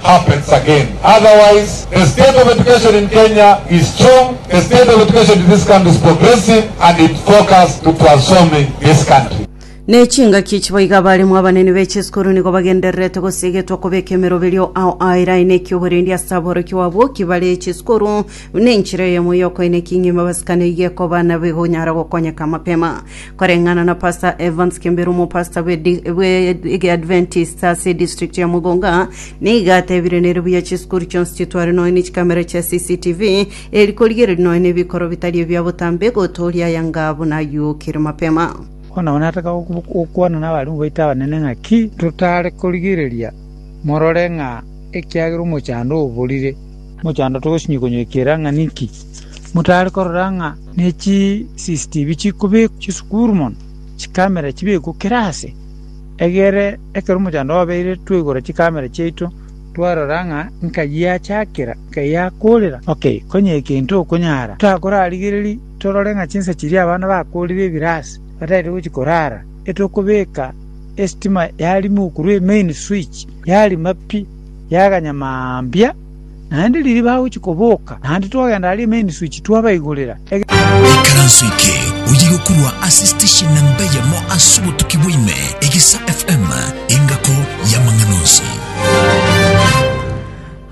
happens again otherwise the state of education in Kenya is strong, the state of education in this country is progressive and it focus to transforming this country. Nechingaki echi boigo abaremu abanene be chisukuru nigo bagendererete gosiegetwa kobeka emeroberio ao a erai na ekiyogorendi ase aborokigwa abwo ki bare chisukuru buna enchera eyemo y'okoina eking'ima abasikani iga ekoba na bigonyara gokonyeka mapema Koreng'ana na Pastor Evans Kemberu omopastor bwe di- bwe egeadventist ase edistrict ya Mugunga, nigo atebire nere buya chisukuru chionsi chitware nonya ne chikamera chia CCTV, eri korigereria nonya nebikoro bitari ebia botambe, gotooria aya ng'a buna ayuokire mapema. Bono abwo nataka oku- gokwana n'abarimu baito abanene ng'a ki totare korigereria morore ng'a ekiagera omochando oborire. Mochando togosinyi konywekera ng'a ninki? Motare korora ng'a ne chisisitivi chikobekwa chisukuru mono, chikamera chibekwe kera aase, egere ekero omochando obeire twaigora chikamera chiaito twarora ng'a nka giachakera, nka giakorera. Ok, konya egento okonyara, totakorarigereria torore ng'a chinsa chiria abana bakorire ebire aase bataete gochia korara, etokobeka esitima yarimo korwa emain switch, yarima pi, yaganya mambia. Naende riria bagochia koboka, naende twagenda aria Emeni-suchi twabaigorera. Ekaranso eke oye gokorwa ase station namba eyemo ase obotuki bwa ime, Egesa FM, engako y'amang'ana onsi.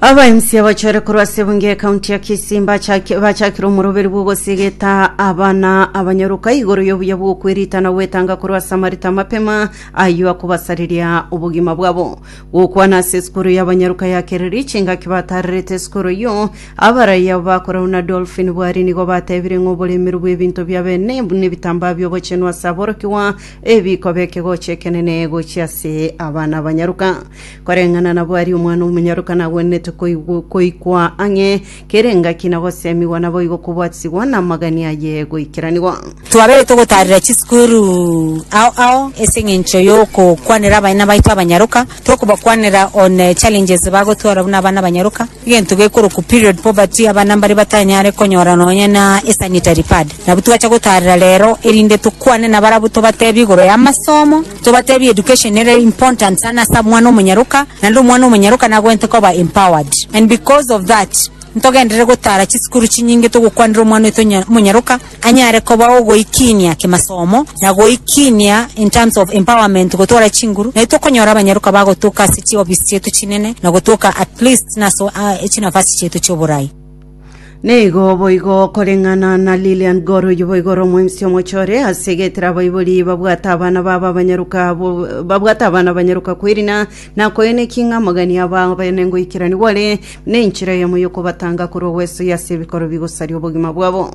Abaimsi abachore korwa ase ebunge ya kaunti ya Kisii mbachaki- bachakire omoroberi bw'ogosigeta abana abanyaruka igoro y'obuya bw'okwerita na gwetanga korwa ase amarita amapema ayio akobasareria obogima bwabo Gokwana ase esukuru y'abanyaruka ya Kereri chingaki bataarerete esukuru eyio, abarai abo bakorau na Dolphin Bwari nigo batebire ng'a oboremeru bw'ebinto bia bene nebitambaa bi'obochenu ase aborokigwa ebikoba ekegocho ekenene gochia ase abana abanyaruka. Koreng'ana na Bwari omwana omonyaruka nagwenerete koigwa ang'e Kera engaki na gosemigwa naboigo kobwatisigwa na amagani aye goikeranigwa. Twabeire togotaarera chisukuru ao ao ase eng'encho y'okokwanera abaina baito abanyaroka, tokobakwanera on challenges bagotwara buna abana abanyaroka, egento gekorokwa period poverty, abana mbaria batanyare konyora nonya na esanitary pad. Nabwo twacha gotaarera rero erinde tokwane nabarabwo tobatebie igoro y'amasomo, Tobatebie education ere important sana ase omwana omonyaroka, naende omwana omonyaroka nagwenerete koba empowered. And because of that, ntogenderere gotara chisukuru chinyinge togokwanera omwana oito onya omonyaroka anyare koba ogoikinia kimasomo, na goikinia in terms of empowerment gotwara chinguru, nai tokonyora abanyaroka bagotoka ase chiofisi chiaito chinene, na gotoka at least naso a chinafasi chiaito chioborai. Nigo boigo okoreng'ana na Lilian Gor oyio boigo ore omoemisi omoche ore ase egetera abaibori babwate abana babo abanyaroka bo- babwate abana abanyaroka kwerina na koenekia ng'a amagani aba abene ngoikeranigwa ore nenchera yamo yokobatanga korwa gwesoyia ase ebikoro bigosaria obogima bwabo.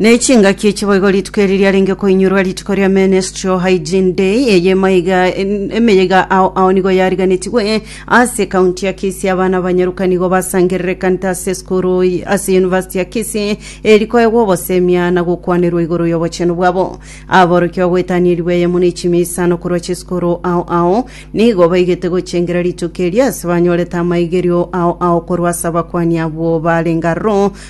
Ne chingaki echi boigo rituko eri riarenge koinyurwa rituko ria Menstrual Hygiene Day, eye emaiga emeyega ao ao nigo yariganetigwe ase ekaunti ya Kisii. Abana abanyaruka nigo basangerera ekanita ase esukuru y- ase University ya Kisii eri koegwa obosemia na gokwanerwa igoro y'obochenu bwabo. Aborokia bagwetanierigwe eyemo ne chimia isano korwa chisukuru ao ao, nigo baigete gochengera rituko eri ase banyorete amaigerio ao ao korwa ase abakuani abwo barenge aroro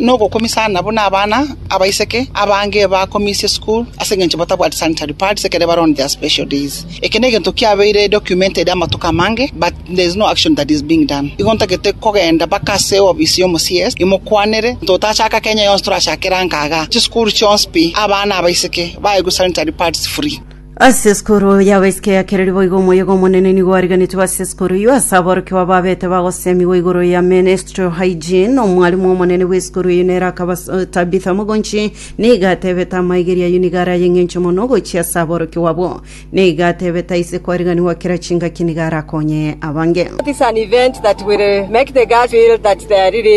nogokumisa aana buna abana abaiseke abange bakomisie school ase engencho batabwati sanitary pads ekero bare on their special days. Eke negento kiabeire documented amatuko amange but there is no action that is being done. Igo ntagete kogenda baka ase eofisi ya omo CS imokwanere ntotachaka Kenya yonsi torachakere angaga chisukuru chionsi pi abana abaiseke baegwe sanitary pads free. Ase esikuru yabo isiko ya kereri boigo omoyega omonene nigo ariganetwe ase esikuru eyio ase aborokigwa babete bagosemigwa igoro ya menstrual hygiene omwarimu omonene bw'esikuru eyio nere akaba eh, Tabitha Mogonchi niga atebete amaigeri ayio niga ara ayeng'encho mono gochia ase aborokigwa abo niga atebete aise kwariganigwa kera chingaki niga arakonye abange It is an event that will make the girls feel that they are really